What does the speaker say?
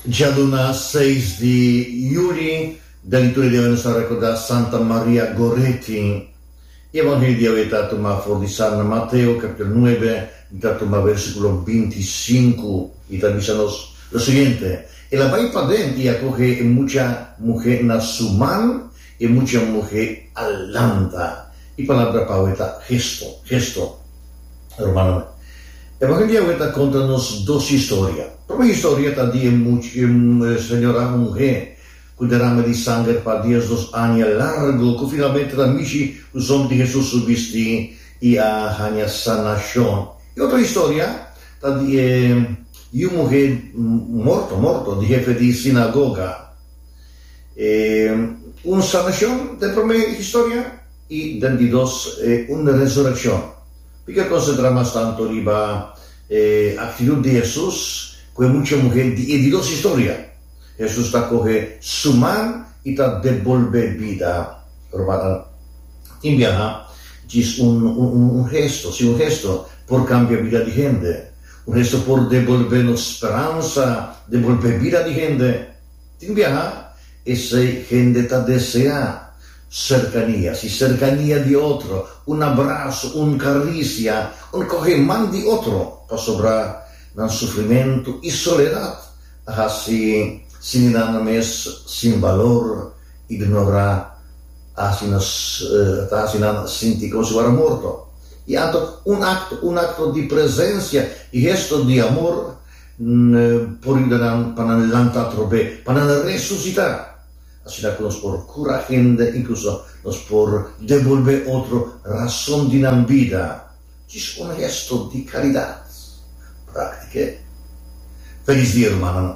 Djaduna seis di Juli, den liturgia diawe nos ta rekorda Santa Maria Goretti. E Evangelio diawe ta tuma for di San Mateo kapitolo nuebe, i ta tuma versikulo binti i sinku, i ta bisa nos lo siguiente, El a bai paden i a kohe e mucha muhe na su man, E mucha muhe a lanta. E palabra pa awe ta gesto, gesto. Hermanonan, e bakal di awe ta konta nos dos historia. Prome historia ta di e señora muhe ku derama di sanger pa diesdos aña largo, ku finalmente ta mishi ku somber di Hesus su bisti i a haña sanashon. E otro historia ta di e yu muhe morto, morto, di hefe di sinagoga. E un sanashon ta e promé di historia i den di dos e un resurekshon. P'ike konsentrá mas tantu riba e aktitut di Hesus ku e mucha muhé di e di dos historia? Hesus ta kohe su man i ta debolbé bida. Rumannan, tin biaha djis un gesto, si un gesto, por kambia bida di hende. Con eso por devolbé nos speransa, devolbé bida di hende. Tin biaha esei hende ta deseá sercania, si cercania di otro, un abrazo, un caricia, un coge man di otro, pasobra nan sufrimentu i soledad a haci siminan nan mes sin valor, ignorá, a haci nos, ta haci nan sinti como si wara morto. I anto un akto, un akto di presensia i hesto di amor por yuda nan pa nan lanta atrobé, pa nan resusitá. Asina ku nos por kura hende, inkluso nos por debolbé otro rason di nan bida. Djis un hesto di karidat práktiku e! Felis dia rumannan!